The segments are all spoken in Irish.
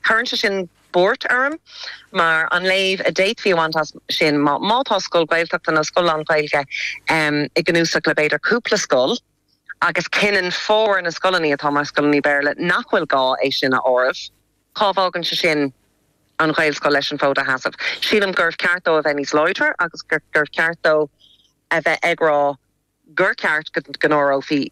Cuireann sé sin buairt orm, mar an léamh a d'fhéadfaí a bhaint as sin ná, má tá scoil Ghaeltachta nó scoil lán-Ghaeilge i gcnuasach le b'fhéidir cúpla scoil, agus cinneann formhór na scoileanna atá mar scoileanna Béarla nach bhfuil gá é sin a áireamh, cá bhfágann sé sin an Ghaelscoil leis an bhfód a sheasamh? Sílim gurbh ceart dó a bheith níos láidre agus gurbh cheart dó a bheith ag rá, gur cheart go n-áireofaí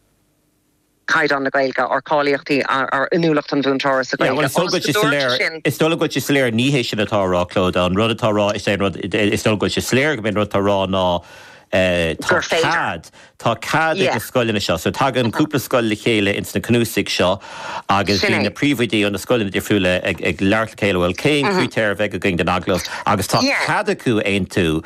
caighdeán na Gaeilge, ar cháilíochtaí, ar inniúlacht an mhúinteora sa Ghaeilge, ionas go dtabharfaidh sin. Is dóigh liom go bhfuil sé soiléir. Ní hé sin atá á rá, Clodagh. An rud atá á rá is é an rud, is dóigh liom go bhfuil sé soiléir go mb'é an rud atá á rá ná tá cead, tá cead ag na scoileanna seo. So tagann cúpla scoil le chéile ins na cnuasaigh seo agus bíonn na príomhoidí ó na scoileanna difriúla ag labhairt le chéile, bhuel, cén crítéir a bheidh againn don agallamh agus tá cead acu aontú.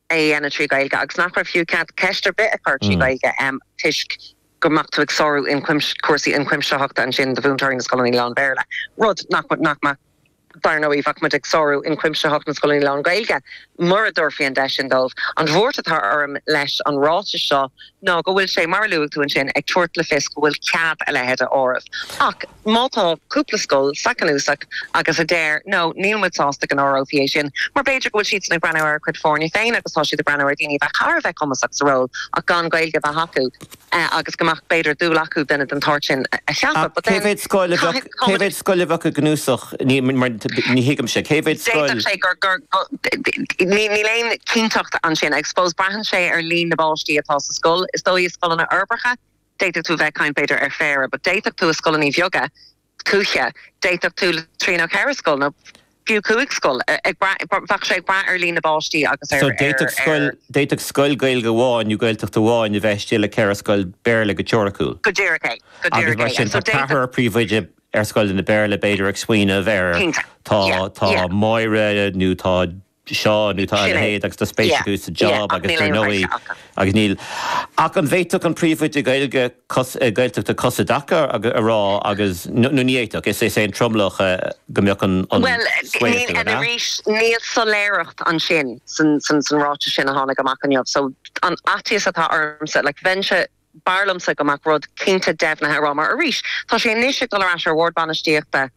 a dhéanamh trí Ghaeilge agus nach raibh fiú ceist ar bith a chur trí Ghaeilge toisc go mbeadh tú ag sárú cúrsaí ionchuimsitheachta ansin do mhúinteoirí na scoileanna lán-Bhéarla, rud nach, nach mbeadh, dar ndóigh, bheadh muid ag sárú ionchuimsitheacht na scoileanna lán-Ghaeilge mura dtabharfaí an deis sin dóibh. An bhuairt atá orm leis an ráiteas seo ná go bhfuil sé, mar a luaigh tú ansin, ag tabhairt le fios go bhfuil cead a leithéid a áireamh. Ach má tá cúpla scoil sa chnuasach agus a deir, nó, níl muid sásta go n-áireofaí é sin, mar b'fhéidir go bhfuil siadsan ag breathnú ar a gcuid foirne féin agus tá siad ag breathnú ar dhaoine a bheith thar a bheith cumasach sa ról ach gan Gaeilge a bheith acu agus go mbeadh, b'fhéidir, dúil acu duine den tsórt sin a cheapadh, But cé mhéad scoil a bheadh, caithfidh, cé mhéad scoil a bheadh i gcnuasach? Ní thuigimse. Cé mhéad scoil? D'fhéadfadh sé gur. Níl aon chinnteacht ansin. I suppose braitheann sé ar líon na bpáistí atá sa scoil. Is dóigh i scoileanna uirbeacha d'fhéadfadh tú a bheith ag caint b'fhéidir ar phéire, but d'fhéadfadh tú i scoileanna bheaga tuaithe, d'fhéadfadh tú trí nó ceithre scoil nó fiú cúig scoil, ag brath, bheadh sé ag brath ar líon na bpáistí agus ar. So d'fhéadfadh scoil Gaeilge amháin nó Gaeltachta amháin a bheith istigh le ceithre scoil Béarla go teoiriciúil. Go díreach é. Go díreach é. Agus mar sin tá ceathrar príomhoide ar scoileanna Béarla, b'fhéidir, ag smaoineamh ar tá, tá Máire nó tá Seán nó tá a leithéid agus tá spéis acu sa job agus ar ndóigh agus níl ach an bhféadfadh an príomhoide Gaeilge, Gaeltachta cos i dtaca a rá agus nó ní fhéadfadh, is é an tromlach go mbeadh an sway acu, an ea? Níl soiléireacht ansin san ráiteas sin a tháinig amach inniu so an faitíos atá ormsa, like bheinnse, b'fhearr liomsa go mbeadh rud cinnte deimhnithe romham. Mar arís, tá sé anois ag dul ar ais ar Bhord Bainistíochta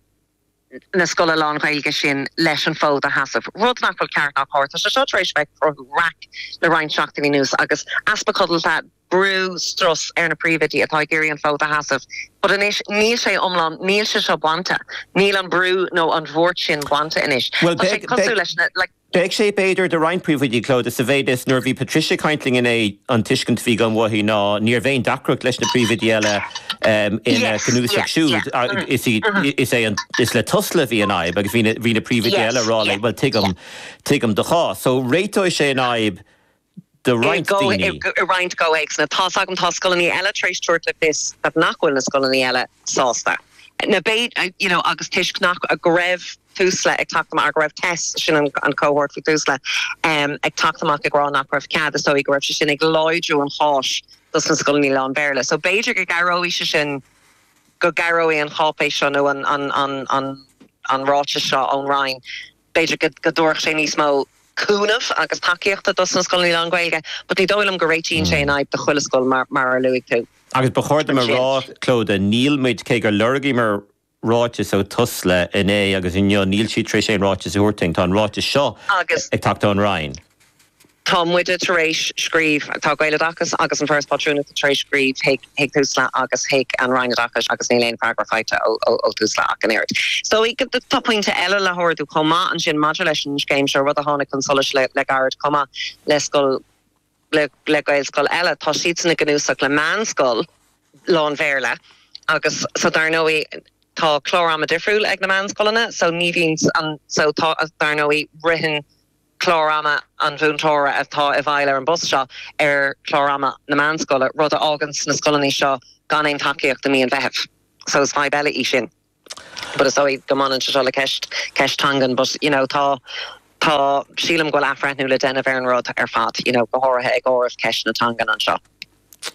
na scoile lán-Ghaeilge sin leis an bhfód a sheasamh, rud nach bhfuil ceart ná cóir. Tá sé seo tar éis a bheith ag cruthú raic le roinnt seachtainí anuas agus easpa codlata, brú, strus ar na príomhoidí atá ag iarraidh an fód a sheasamh. But anois, níl sé iomlán, níl sé seo bainte, níl an brú nó an bhuairt sin bainte anois. Tá sé ag tosú leis na. Beidh sé, b'fhéidir, do roinnt príomhoidí, Clodagh, sa mhéid is, nuair a bhí Patricia ag caint linn inné, an tuiscint a bhí agam uaithi ná ní raibh aon deacracht leis na príomhoidí eile ina gcnuasach siúd. Is é an, is le Tusla a bhí an fhadhb agus bhí na príomhoidí eile ag rá léi, bhuel, tuigim, tuigim do chás. So, réiteoidh sé an fhadhb. do roinnt daoine. i roinnt gcomhthéacsanna, tá's agam, tá scoileanna eile tar éis tabhairt le fios that nach bhfuil na scoileanna eile sásta. But you know, agus toisc nach, go raibh Tusla ag teacht amach, go raibh Tess, sin an cohort faoi Tusla, ag teacht amach ag rá nach raibh cead, is dóigh go raibh sé sin ag láidriú an cháis dos na scoileanna lán-Bhéarla. So b'fhéidir go gcabhróidh sé sin, go gcabhróidh an cháipéis seo nó an ráiteas seo ón Roinn b'fhéidir go dtabharfadh sé níos mó cúnaimh agus tacaíochta dos na scoileanna lán-Ghaeilge but ní dóigh liom go réitíonn sé an fhadhb do chuile scoil mar a luaigh tú. Agus ba chóir dom a rá, Clodagh, níl muid, cé gur lorgaíomar ráiteas ó Tusla inné agus inniu, níl siad tar éis aon ráiteas a thabhairt dúinn, tá an ráiteas seo ag teacht ón Roinn. Tá muide tar éis scríobh, tá Gaeloideachas agus an Foras Pátrúnachta tar éis scríobh chuig Tusla agus chuig an Roinn Oideachais agus níl aon freagra faighte ó Tusla ach an oiread. So tá pointe eile le hardú chomh maith ansin maidir leis an scéim seo, rud a tháinig chun solais le gairid chomh maith le scoil, le Gaelscoil eile, tá siadsan i gcnuasach le meánscoil lán-Bhéarla agus so dar ndóigh tá clár ama difriúil ag na meánscoileanna so ní bhíonn an, so tá, dar ndóigh ritheann, clár ama an mhúinteora atá i bhfeighil ar an bpost seo ar chlár ama na meánscoile, rud a fháganns na scoileanna seo gan aon tacaíocht i mí an Mheithimh. So is fadhb eile í sin. But is dóigh go mbaineann sé seo le ceist, ceist teangan but you know tá, tá, sílim go bhfuil athbhreithniú le déanamh ar an rud ar fad, you know go háirithe ag áireamh ceist na teangan anseo.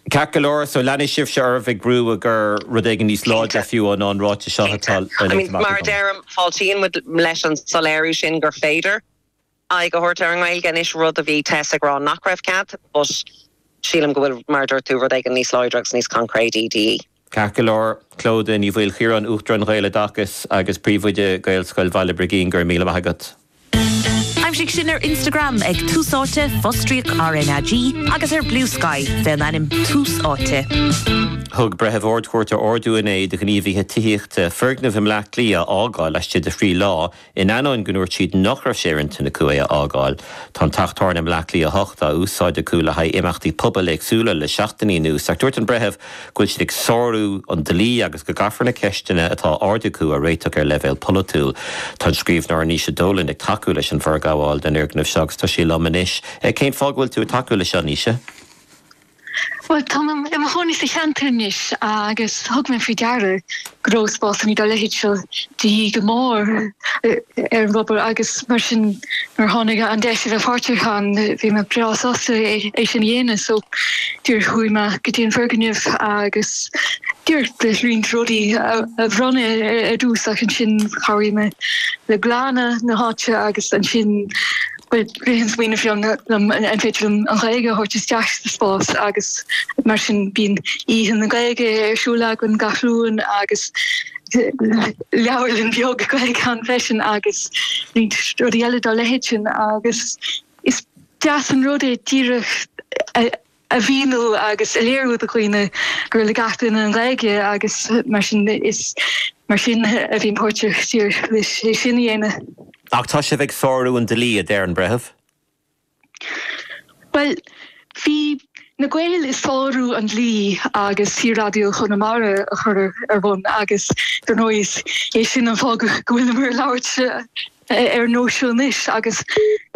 Ceart go leor, so leanfaidh sibhse oraibh ag brú i gcomhair rud éigin níos Cinnte. láidre fiú ná an ráiteas seo Cinnte. atá I mean, léite amach mar a agam. deirim, fáiltíonn muid leis an soiléiriú sin gur féidir aghaidh a thabhairt ar an nGaeilge anois, rud a bhí Tess ag rá nach raibh cead, but sílim go bhfuil, mar a dúirt tú, rud éigin níos láidre agus níos concréidí de dhíth. Ceart go leor, Clodagh Ní Mhaoilchiaráin, Uachtarán Ghaeloideachas agus Príomhoide Ghaelscoil Bhaile Brigín, go raibh míle maith agat. Aimsigh sinn ar Instagram ag Tús Áite, fostríoc RnaG, agus ar Bluesky fén ainm Tús Áite. Thug Breitheamh Ard-Chúirte ordú inné do ghníomhaithe tithíochta foirgneamh i mBleá Cliath a fhágáil laistigh de thrí lá In ainneoin go ndúirt siad nach raibh sé ar intinn acu é a fhágáil, tá an teach tábhairne i mBleá Cliath 8 á úsáid acu le haghaidh imeachtaí pobail éagsúla le seachtainí anuas ach dúirt an Breitheamh go bhfuil siad ag sárú an dlí agus go gcaithfear na ceisteanna atá á ardú acu a réiteach ar leibhéal polaitiúil. Tá an scríbhneoir Naoise Dolan ag tacú leis an bhforghabháil den fhoirgneamh seo agus tá sí liom anois. Cén fáth go bhfuil tú ag tacú leis seo, Naoise? Bhuel, tá mé i mo chónaí sa cheantar anois agus thug mé faoi deara go raibh spásanna dá leithéid seo de dhíth go mór ar an bpobal agus mar sin nuair a tháinig an deis a bheith páirteach ann bhí mé breá sásta é sin a dhéanamh. So chuaigh mé go dtí an foirgneamh agus díreach le roinnt rudaí a bhronnadh ar dtús ach ansin chabhraigh mé le glanadh na háite agus ansin Rith an smaoineamh liom arbh fhéidir an Ghaeilge a thabhairt isteach sa spás agus mar sin bíonn Oíche na Gaeilge ar siúl againn gach Luan agus leabharlann bheag Gaeilge ann freisin agus roinnt rudaí eile dá leithéid sin agus is deas an rud é díreach a mhíniú agus a léiriú do dhaoine gur le gach duine an Ghaeilge agus mar sin is mar sin a bhí mé páirteach ar é sin a dhéanamh. Ach tá sibh ag sárú an dlí, a deir an Breitheamh. Bhuel, bhí na Gaeil ag sárú an dlí agus Saor-Raidió Chonamara a chur ar bun agus dar ndóigh is é sin an fáth go bhfuilimid ag labhairt. ar nós seo anois agus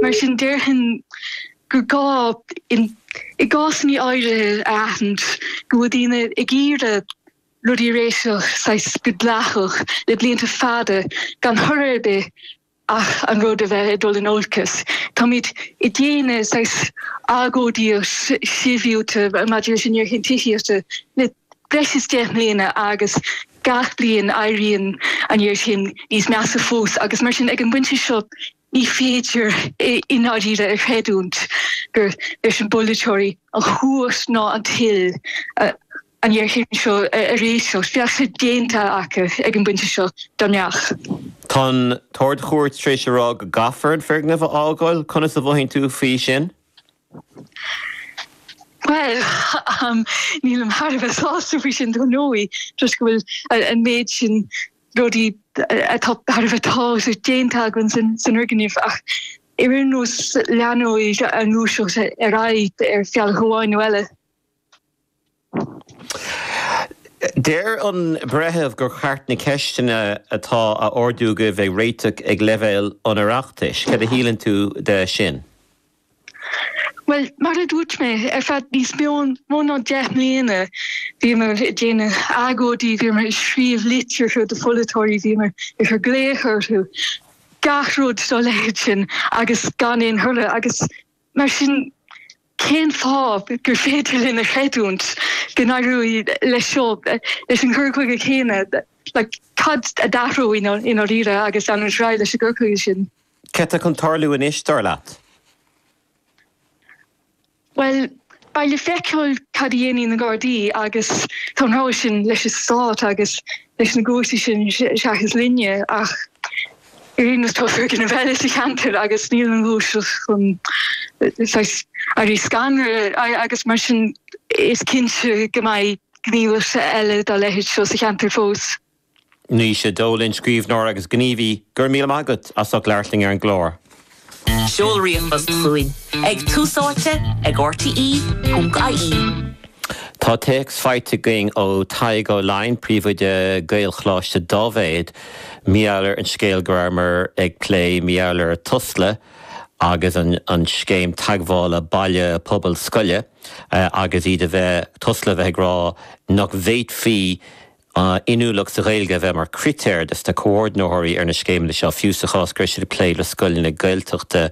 mar sin déarfainn gur gá i gcásanna áirithe a aithint go bhfuil daoine ag iarraidh rudaí a réiteach saghas go dleathach le blianta fada gan thoradh ar bith ach an rud a bheith ag dul in olcas. Táimid ag déanamh saghas agóidíocht shibhialta maidir leis an ngéarchéim tithíochta le breis is deich mbliana agus Gach bliain, éiríonn an ghéarchéim níos measa fós agus mar sin, ag an bpointe seo, ní féidir i ndáiríre a chreidiúint go bhfuil ag na polaiteoirí an chumhacht ná an toil an ghéarchéim seo a réiteach. Bheadh sé déanta acu ag an bpointe seo dá mbeadh. Tá an tArd-Chúirt tar éis a rá go gcaithfear an foirgneamh a fhágáil. Conas a mhothaíonn tú faoi sin? Bhuel, nílim thar a bheith sásta faoi sin, dar ndóigh, toisc go bhfuil an méid sin rudaí tairbheacha déanta againn san fhoirgneamh. Ach ar aon nós, leanfaidh an ghluaiseacht ar aghaidh, ar bhealach amháin nó eile. Deir an Breitheamh gur cheart na ceisteanna atá á ardú agaibh a réiteach ag leibhéal an Oireachtais. Cad a shíleann tú de sin? Bhuel, mar a dúirt mé, ar feadh níos mó ná deich mbliana bhíomar ag déanamh agóidí, bhíomar ag scríobh litreacha do pholaiteoirí, bhíomar ag cur glaoch orthu, gach rud dá leithéid sin agus gan aon thoradh agus, Mar sin, cén fáth gur féidir linn a chreidiúint go n-éireoidh leis seo, leis an gcur chuige céanna? Cad a d'athródh i ndáiríre agus an raibh leis an gcur chuige sin? Cad atá chun tarlú anois, dar leat? Bhuel, beidh le feiceáil cad a dhéanfaidh na Gardaí agus tá an rogha sin leis an Stát agus leis na gcúirteanna sin seachas linne ach, Éirinn agus tá sé ag déanamh eile sa cheantar agus níl an ghluaiseacht chun saghas éirí scanradh agus mar sin is cinnte go mbeidh gníomhas eile dá leithéid seo sa cheantar fós. Naoise Dolan, scríbhneoir agus gníomhaí, go raibh míle maith agat as ucht labhairt linn ar an gclár. Seol ríomhphost chugainn ag Tús Áite ag RTÉ.ie. Tá téacs faighte againn ó Tadhg Ó Laighin, Príomhoide Gaelcholáiste Daibhéid, mar gheall ar an scéal go rabhamar ag plé mar gheall ar Tusla agus an scéim teagmhála baile pobal scoile agus iad a bheith, Tusla a bheith ag rá nach bhféadfaí a n-inniúlacht sa Ghaeilge a bheith mar chritéir dos na comhordnaitheoirí ar na scéimeanna seo, fiú sa chás go raibh siad ag plé le scoileanna Gaeltachta.